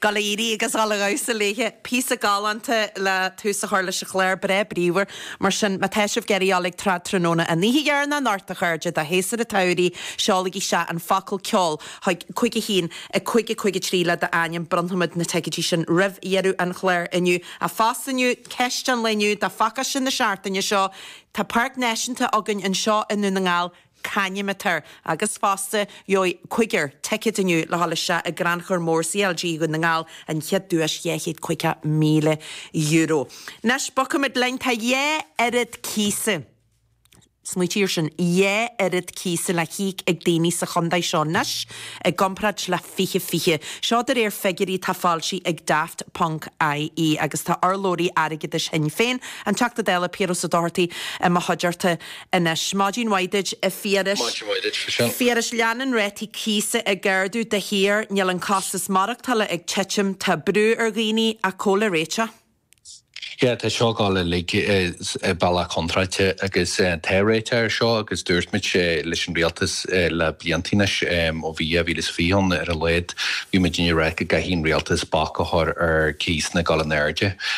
Gailearaí agus Halla Dhamhsa Léithe, Píosa galánta le tús a chur leis an chlár breá bríomhar mar sin. Má tá sibh ag iarraidh dul ag Trad Tráthnóna an oíche dheireanach anocht, a chairde, de Shéasúr an tSamhraidh, seolaigí isteach an focal, ceol, chuig cúig a haon, a cúig, a cúig a trí le d'ainm. Bronnfaimid na ticeidí sin roimh dheireadh an chláir inniu. Fosta inniu, Ceist an lae inniu, do phacáiste na seachtaine seo Tá páirc náisiúnta againn anseo i nDún na nGall. c'ainm atá air agus fosta gheobhaidh cúigear ticead inniu le dhul isteach i gcrannchur mór CLG Dhún na nGall, an chéad duais €250,000. Anois bogaimid linn, tá dhá oiread cíosa, smaoitigh ar sin, dhá oiread cíosa le híoc ag daoine sa chontae seo anois i gcomparáid le fiche fiche. Seo de réir figiúirí atá foilsithe ag Daft ponc ie agus tá urlabhraí airgeadais Shinn Féin, an Teachta Dála Piaras Ó Dochartaigh, i mo chuideachta. anois. Maidin mhaith duit, a Phiarais. Maidin mhaith duit freisin. Phiarais, leanann rátaí cíosa ag ardú de shíor, níl an costas maireachtála ag titim, tá brú ar dhaoine cá bhfuil an réiteach. Yeah, tá seo ag dul uilig i bealach contráilte agus tá réiteach ar seo agus dúirt muid leis an rialtas le blianta anois, ó bhí 2020 ann ar a laghad, bhí muid ag rá go gcaithfidh an rialtas bac a chur ar cíosanna ag dul in airde.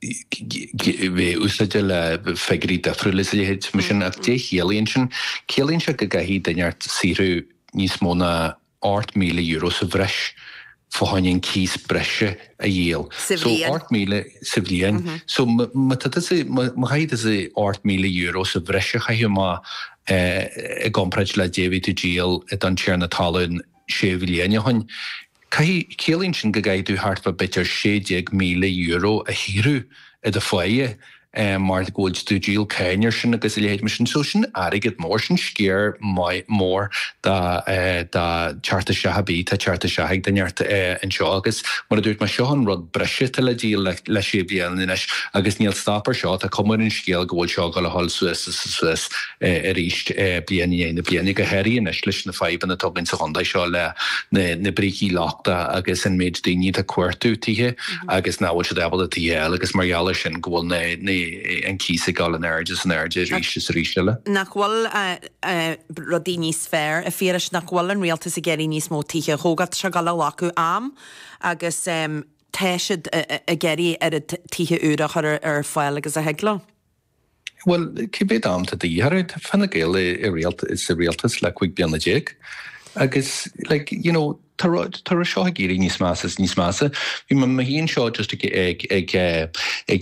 Bhí úsáid le figiúirí difriúla is a leithéid mar sin ach dé a chiallaíonn sin, ciallaíonn sé go gcaithfidh duine thart saothrú níos mó ná ocht míle euro sa bhreis fá choinne an cíos breise a dhíol. Sa bhliain? Ocht míle sa bhliain. So má chaithfidh tusa ocht míle euro sa bhreis a chaitheamh i gcomparáid le dé a bhí tú ag díol don tiarna talún sé bhliain ó shin. Caithfidh, ciallaíonn sin go gcaithfidh tú thart fá b'fhéidir €16,000 a shaothrú i do pháighe mar go bhfuil tú ag díol cáin ar sin agus a leithéid mar sin. So sin airgead mór, sin sciar maith, mór dá, dá theacht isteach, a bhí, atá ag teacht isteach ag daoine thart anseo agus mar a dúirt mé, seo an rud breise atá le díol le, le sé bhliain anois agus níl stop ar seo, tá cuma ar an scéal go bhfuil seo ag dul a dhul suas is suas. arís bliain i ndiaidh na bliana, go háirithe anois leis na fadhbanna atá againn sa chontae seo le na brící lochta agus an méid daoine atá ag cuartú tithe agus nach bhfuil siad ábalta tithe a fháil agus mar gheall air sin go bhfuil an cíos ag dul in airde is in airde arís is arís eile. Nach bhfuil rudaí níos fearr, a Phiarais, nach bhfuil an rialtas ag iarraidh níos mó tithe a thógáil? Tá sé ag dul a ghlacadh am agus tá siad ag iarraidh oiread tithe úra a chur ar fáil agus a thig leo. Bhuel, cá mhéad am atá de dhíth orthu, tá Fine Gael sa rialtas le cúig bliana déag agus like you know tá an rud seo ag éirí níos measa is níos measa. Bhí mé féin seo just ag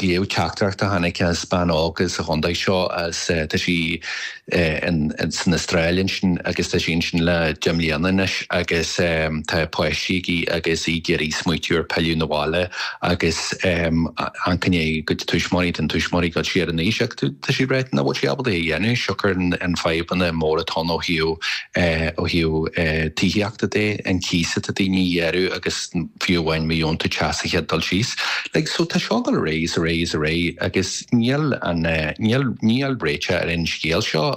léamh teachtaireacht a tháinig as bean óg sa chontae seo, tá sí san Astráil ansin agus tá sí ansin le deich mbliana anois agus tá páistí aici agus í ag iarraidh smaoitiú ar pilleadh 'na bhaile agus tá cionn dá tuismitheoirí den tuismitheoirí ag dul siar in aois agus tá sí ag ráit ná bhfuil sí ábalta é a dhéanamh siocair na fadhbanna móra atá ann ó thaobh ó thaobh tithíochta de an cíos atá daoine ag iarraidh agus fiú amháin má leanann tú ceisteanna tithe ag dul suas like so tá sé ag dul ar aghaidh is ar aghaidh is ar aghaidh agus Níl an, níl, níl réiteach ar an scéal seo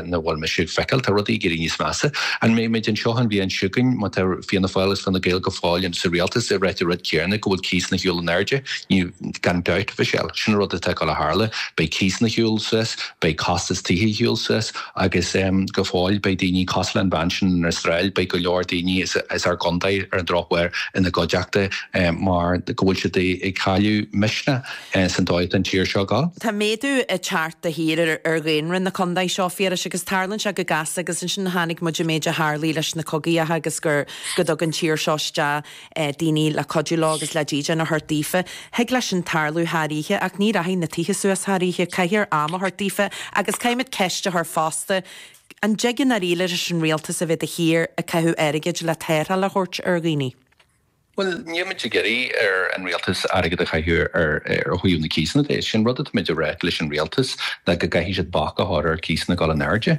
nó go bhfuil mise ag feiceáil, tá rudaí ag éirí níos measa. An mbeidh muid anseo an bhliain seo chugainn, má tá Fianna Fáil agus Fine Gael go fóill sa rialtas, ag ráit an rud céanna, go bhfuil cíosanna ag dul in airde? Beidh, gan dabht, Mhichelle. Sin an rud atá ag dul a tharlú. Beidh cíosanna ag dul suas, beidh costas tithe ag dul suas agus go fóill beidh daoine, cosúil le an bhean sin san Astráil, beidh go leor daoine as, as ár gcontae ar an drochuair ina gcuideachta mar go bhfuil siad ag cailleadh misneach. Is an dóchas don tír seo go. Tá méadú ag teacht de shíor ar dhaonra na contae seo, Phiarais, agus tarlann sé go gasta agus ansin chonaic muid an méid a tharlaigh leis na cogaíocha agus gur go dtug an tír seo isteach daoine le cuidiú leo agus le dídean a thabhairt daofa. Thig leis sin tarlú thar oíche ach ní rachaidh na tithe suas thar oíche, caithfear am a thabhairt daofa agus caithfimid ceist a chur fosta, an dtig in ndáiríre leis an rialtas a bheith de shíor ag caitheamh airgid le tarrtháil a thabhairt ar dhaoine? Bhuel, níl muid ag iarraidh ar an Rialtas airgead a chaitheamh ó thaobh na cíosanna de. Sin an rud atáimid ag ráit leis an Rialtas ná go gcaithfidh siad bac a chur ar chíosanna ag dul in airde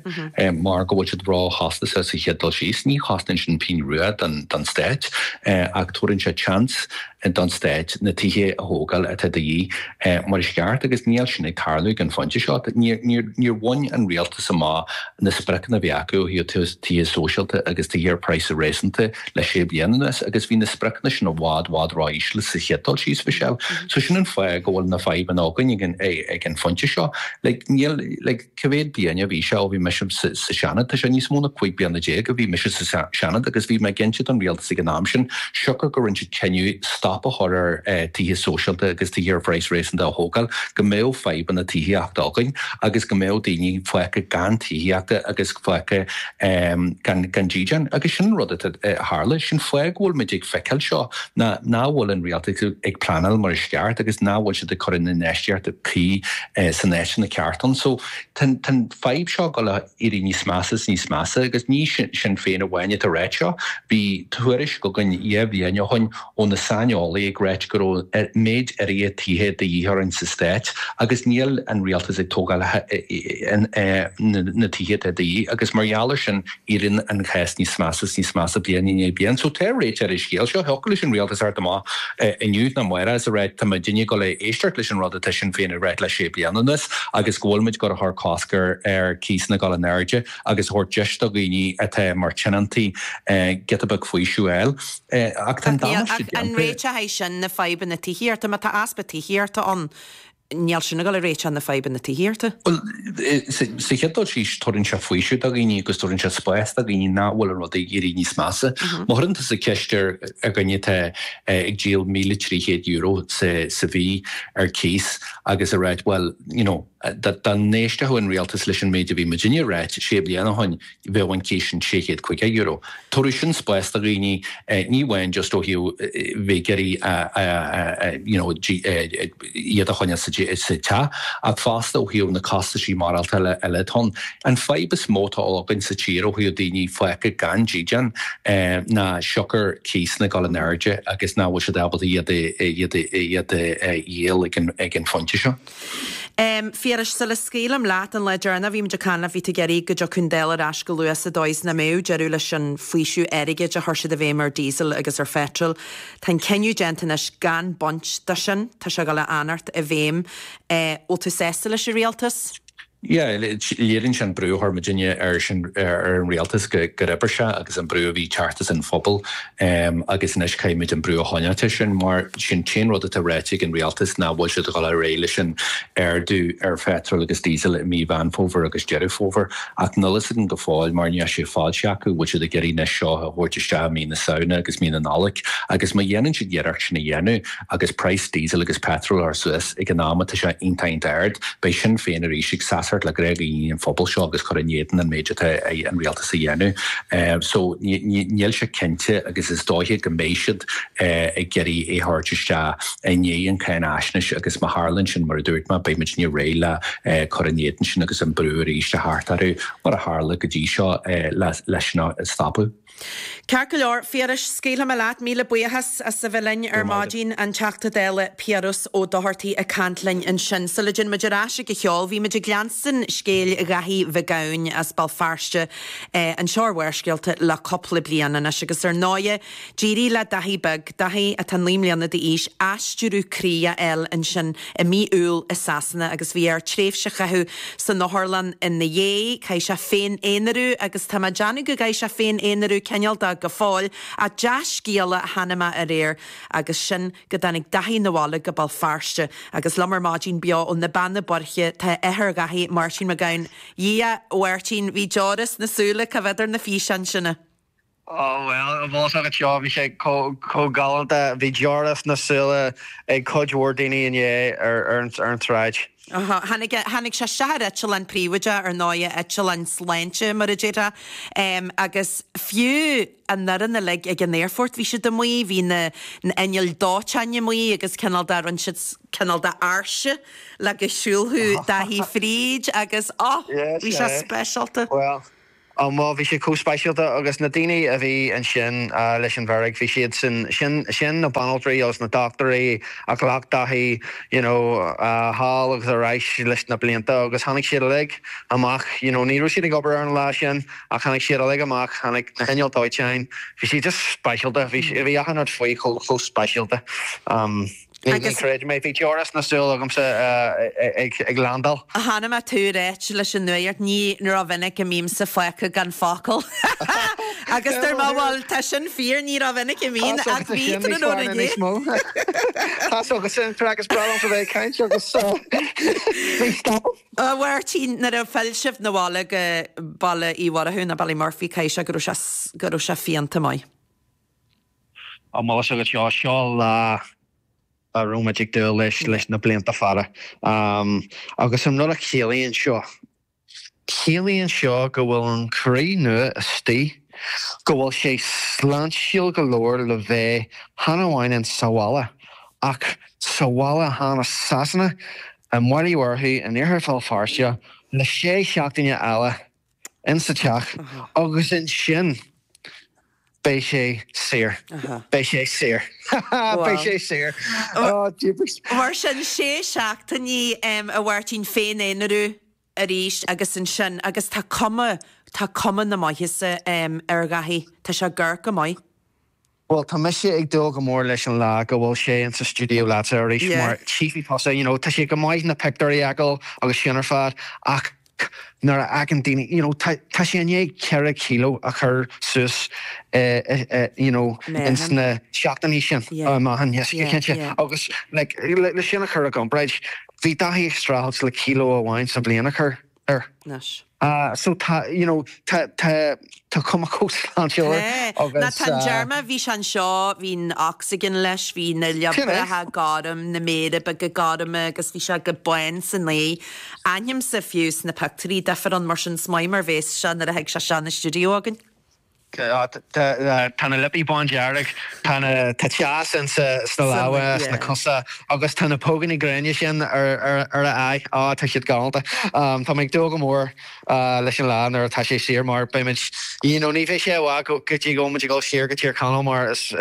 mar go bhfuil siad róchostasach sa chéad dul síos. Ní chosnaíonn sin pingin rua don Stát ach tabhaireann sé seans don Stát na tithe a thógáil atá de dhíth mar is ceart agus níl sin ag tarlú ag an phointe seo. Níor bhain an Rialtas amach na spriocanna a bhí acu ó thaobh tithe sóisialta agus tithe ar praghas réasúnta le sé bliana anuas agus bhí na spriocanna sin i bhfad, bhfad ró íseal sa chéad dul síos, Mhichelle. So sin an fáth go bhfuil na fadhbanna againn ag an phointe seo. Like, níl, like, cé mhéad bliain a bhí sé ó bhí mise sa Seanad? Tá sé níos mó na cúig bliana déag ó bhí mise sa Seanad agus bhí mé ag inse don Rialtas ag an am sin siocair gur rinne siad cinneadh stop a chur ar tithe sóisialta agus tithe ar phraghas réasúnta a thógáil go mbeadh fadhbanna tithíochta againn agus go mbeadh daoine fágtha gan tithíocht agus fágtha gan dídean agus sin an rud atá ag tarlú. Sin an fáth go bhfuil muid ag feiceáil seo ná ná bhfuil an Rialtas ag pleanáil mar is ceart agus ná bhfuil siad ag cur an infheistíocht cuí sna háiteanna ceart ann. So tá an fadhb seo ag dul a. éirí níos measa is níos measa agus ní Sinn Féin amháin atá ag ráit seo. Bhí tuairisc againn dhá bhliain ó shin ó na saineolaí ag ráit go raibh méid áirithe tithe de dhíth orainn sa stát agus níl an rialtas ag tógáil na tithe atá de dhíth agus mar gheall ar sin éiríonn an cás níos measa is níos measa bliain i ndiaidh bliain. So tá réiteach ar an scéal seo, thiocfadh leis an rialtas airde amach, inniu nó amárach is a ráit tá muidinne ag dul a éisteacht leis an rud atá Sinn Féin a ráit le sé bliana anuas agus go bhfuil muid ag dul a chur cosc ar ar cíosanna dul in airde agus a thabhairt deis do dhaoine atá mar tionóntaí giota beag faoiseamh a fháil. Ach tá an damáiste déanta. An réiteochaidh sin na fadhbanna tithíochta? Má tá easpa tithíochta ann, Níl sin ag dul a réiteach na fadhbanna tithíochta. Bhuel, sa chéad dul síos, tabhrann sé faoiseamh do dhaoine agus tabhrann sé spás do dhaoine nach bhfuil an rud ag éirí níos measa. Má chuireann tusa ceist ar dhuine atá ag díol míle trí chéad euro sa mhí ar cíos agus a ráit, bhuel, you know, dá n-éistfeadh an rialtas leis an méid a bhí muidinne a ráit sé bliana ó shin, bheadh an cíos sin €650. Tabharfadh sin spás do dhaoine, ní amháin just ó thaobh bheith ag iarraidh you know iad a choinneáil sa teach ach fosta ó thaobh na costaisí maireachtála eile atá ann. An fadhb is mó atá againn sa tír ó thaobh daoine fágtha gan dídean ná siocair cíosanna ag dul in airde agus nach bhfuil siad ábalta iad a dhíol ag an phointe seo. Phiarais, Sula scaoilim leat an lá deireanach a bhí muid ag caint leat bhí tú ag iarraidh go dtiocfadh an Dáil ar ais go luath sa dóigh is nach mbeadh deireadh leis an bhfaoiseamh airgid a chuir siad i bhfeidhm ar Diesel agus ar Phetrol. Tá an cinneadh déanta anois gan baint de sin. Tá sé ag dul a fhanacht i bhfeidhm. Bhfuil tú sásta leis an Rialtas? Léiríonn sin an brú a chuir muidinne ar an rialtas gur oibir sé agus an brú a bhí ag teacht as an phobal agus anois caithfimid an brú a choinneáilt ar sin mar is é an t-aon rud atá ráite ag an rialtas nach bhfuil siad a dhul ar aghaidh leis an ardú ar phetrol agus díosal i mí Mheán Fómhair agus Deireadh Fómhair ach níl a fhios againn go fóill mar níl sé foilsithe acu bhfuil siad ag iarraidh anois seo a thabhairt isteach i mí na Samhna agus mí na Nollag agus má dhéanann siad iarracht sin a dhéanamh Agus praghas diesel agus petrol a chur suas ag an am atá sé iontach ard, beidh Sinn Féin arís ag seasacht le gnáthdhaoine an phobail seo agus cur in éadan an méid atá an rialtas a dhéanamh. So níl sé cinnte agus is dóiche go mbeidh siad ag iarraidh é thabhairt isteach i ndiaidh an cáinaisnéis agus má tharlaíonn sin mar a dúirt mé beidh muidinne réidh le cur in éadan sin agus an brú arís a thabhairt orthu mar a tharla go dtí seo leis sin a stopadh. Ceart go leor, Phiarais, scaoilfidh mé leat. Míle buíochas as a bheith linn ar maidin. An Teachta Dála Piaras Ó Dochartaigh ag caint linn ansin. Sula dtéann muid ar ais ag an cheol, bhí muid ag leanstan scéil Dhaithí Mhic Gabhann as Béal Feirste, anseo ar Bharrscéalta, le cúpla bliain anois. Agus ar ndóigh, d'éirigh le Daithí beag, Daithí atá naoi mbliana d'aois, aistriú croí a fháil ansin. i mí Iúil i Sasana agus bhí air tréimhse a chaitheamh san otharlann ina dhiaidh. Chaith sé féin-aonrú agus tá mé ag déanamh go gcaithfidh sé féin-aonrú cineálta go fóill ach dea-scéala a chonaic mé aréir agus sin go dtáinig Daithí na bhaile go Béal Feirste agus liom ar maidin beo ó na Beanna Boirche tá athair Dhaithí, Máirtín Mac Gabhann. Dhia! Mháirtín, bhí deora sna súile, ag coimhéad ar na físeáin sin a. Oh well, an bhfuil fhios agat seo bhí sé chomh galánta, bhí deora sna súile ag cuid mhór daoine inné ar an tsráid. Aha, tháinig sé isteach ar eitleán príobháideach, ar ndóigh, eitleán sláinte mar a déarfá, agus fiú an fhoireann uilig ag an aerfort bhí siad amuigh, bhí na n-innill dóiteáin amuigh agus cineál de, rinne siad cineál de áirse le go siúlfadh Dáithí fríd agus oh, bhí sé speisialta. Well, Um bhuel bhí sé chomh speisialta agus na daoine a bhí ansin leis an bhfeirg, bhí siad sin, sin, sin na banaltraí agus na dochtúirí a ghlac Dáithí you know thall agus ar ais leis na blianta agus tháinig siad uilig amach you know ní raibh siad ag obair ar an lá sin ach tháinig siad uilig amach, tháinig na hinneall dóiteáin, bhí sé just speisialta, bhí, bhí achan rud faoi chomh, chomh speisialta. Creid mé bhí deora sna súile agamsa ag landáil. Chonaic mé tú ag ráit leis an nuaíocht, ní rómhinic a mbímse fágtha gan focal. Agus dúirt mé bhuel, tá sin fíor, ní rómhinic a mbíonn ach bhí tráthnóna inniu. Tá's agatsa, tá is breá liomsa bheith ag caint agus bhí stop. A Mháirtín, nuair a phill sibh 'na bhaile go Baile Uí Mhurchú, ná Ballymurphy, caithfidh sé go raibh sé, go raibh sé fiánta maith. An bhfuil fhios agat seo, seo lá a raibh muid ag dúil leis leis na blianta fada agus an rud a chiallaíonn seo, ciallaíonn seo go bhfuil an croí nua istigh, go bhfuil sé sláintiúil go leor le bheith chan amháin in sa bhaile ach sa bhaile chan i Sasana, i mBaile Uí Mhurchú in iarthar Bhéal Feirste le sé seachtaine eile. in sa teach agus ansin beidh sé saor. Beidh sé saor. Beidh sé saor. Mar sin sé seachtainí um a Mháirtín féin-aonrú arís agus ansin agus tá cuma tá cuma na maitheasa um ar Dháithí. Tá sé ag amharc go maith. Bhuel, tá mise ag dúil go mór leis an lá go bhfuil sé in sa stiúideo leatsa arís mar chífidh tusa, you know, tá sé go maith na pictiúirí a fheiceáil agus sin ar fad ach nuair a fheiceann daoine, you know, tá, tá sé i ndiaidh ceithre kilo a chur suas i, i, you know, in sna seachtainí sin, amháin, yes, cinnte agus like, le sin a chur i gcomparáid, bhí Dáithí ag streachailt le kilo amháin sa bhliain a chur. air. Nice. Ah so tá you know tá tá tá cuma chomh sláintiúil air agus. Ná an t-am deireanach a bhí sé anseo bhí an oxygen leis bhí na liobracha gorm na méara beaga gorma agus bhí sé chomh bán san aghaidh um so fiú sna pictiúirí duifear ann mar sin is maith mar bhéas sé nuair a thig sé isteach 'na stiúideo againn. Tá na liopaí bándearg, tá an teas ann sna lámha, sna cosa agus tá na póigíní gréine sin ar a aghaidh. Á, tá siad galánta. Tá mé ag dúil go mór leis an lá nuair atá sé saor mar beimid, you know, ní bheidh sé i bhfad go dtí go bhfuil muid ag dul saor go Tír Chonaill mar is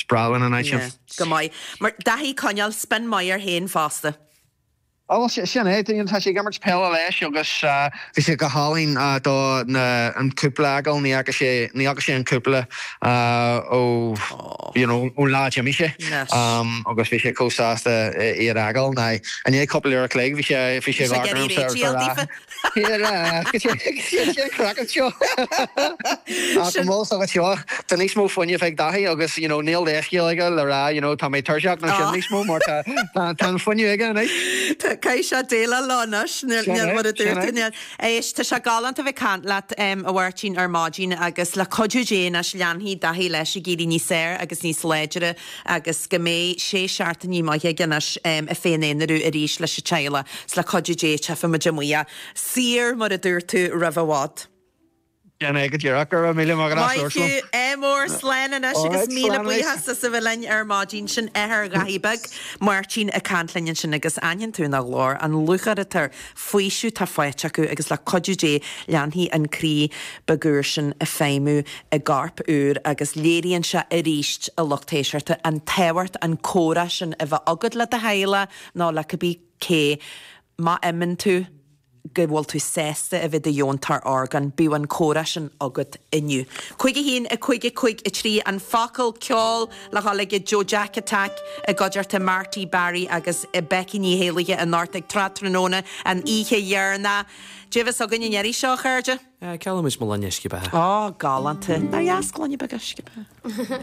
breá linn an áit sin. Yeah, go maith. Mar, d'fhéadfaí coinneáil spin maith air féin fosta. Bhuel, sin é, tá sé ag imirt peile leis agus. bhí sé go hálainn don cúpla a dh'fheiceáil, ní fhaca sé ní fhaca sé an cúpla ó you know ón lá a d'imigh sé agus bhí sé chomh sásta iad a dh'fheiceáil. Ach i ndiaidh cúpla uair a chloig bhí sé bhí sé dhá ghram sa lá. Bhíodar ag siúl an craic anseo ach go mall san anseo. Tá níos mó fuinnimh ag Daithí agus you know níl leithscéal aige le rá you know tá mé tuirseach nó sin níos mó mar tá tá an fuinneamh aige anois. Caithfidh sé déileáil leo anois. Sin é, sin é. Éist, tá sé galánta a bheith ag caint leat, a Mháirtín, ar maidin agus le cuidiú Dé anois leanfaidh Daithí leis ag éirí níos fearr agus níos láidre agus go mbeidh sé seachtainí maithe againn anois ag féin-aonrú arís leis an teaghlach, 's le cuidiú Dé beidh muid amuigh saor mar a dúirt tú roimh i bhfad. Déanfaidh mé go díreach, go raibh míle maith as uair liom. Maith thú, MR. Slán anois agus Alright, míle slán anois. buíochas as a bheith linn ar maidin. Sin athair Dháithí Bhig, Máirtín ag caint linn ansin agus aithníonn tú ina ghlór an lúcháir atá air faoiseamh atá faighte acu agus le cuidiú Dé leanfaidh an croí beag úr sin ag feidhmiú i gcorp úr agus léiríonn sé arís a lucht éisteachta an tábhacht an comhrá sin a bheith agat le do theaghlach nó le cibé cé má bhíonn tú go bhfuil tú sásta a bheith i do dheontóir orgán bíodh an comhrá sin agat inniu. 51553 an focal ceoil. Le ceol ag Joe Jack Attack i gcuideachta Marty Barry agus Becky Ní hÉallaithe i nDort ar Tráthnóna an oíche dheireanach. Dé bhfios againn an éirí seo, a chairde? Geallaimid mo lainne uisce beatha. Galánta. Nár dheas gloine beag uisce beatha?